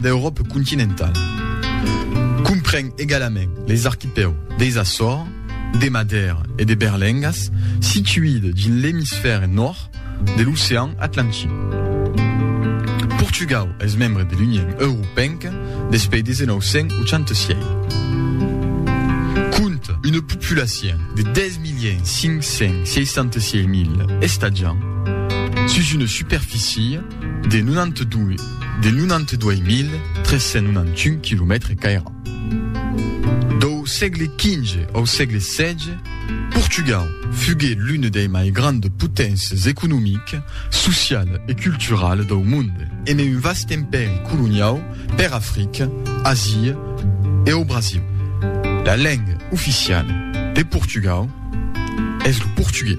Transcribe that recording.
D'Euròpe continentala. Compren egalament les arquipèu deis Açores, de Madèra e de Berlengas, situide dins l'emisfère nòrd de l'ocean Atlantic. Portugau es membre de l'Union Europenca despei de 1986. Compte una populacion de 10.566.000 estatjants sus una superficie De 92.391 quilomètres qu'aira. Dau sègle XV au sègle xvi, Portugal fugué l'une dei mai grandes poténces economiques, sociales e culturales dau monde. Emé un vast empèri coloniau per Africa, Asia e au Brasil. La lenga oficiala de Portugal es lo portugués.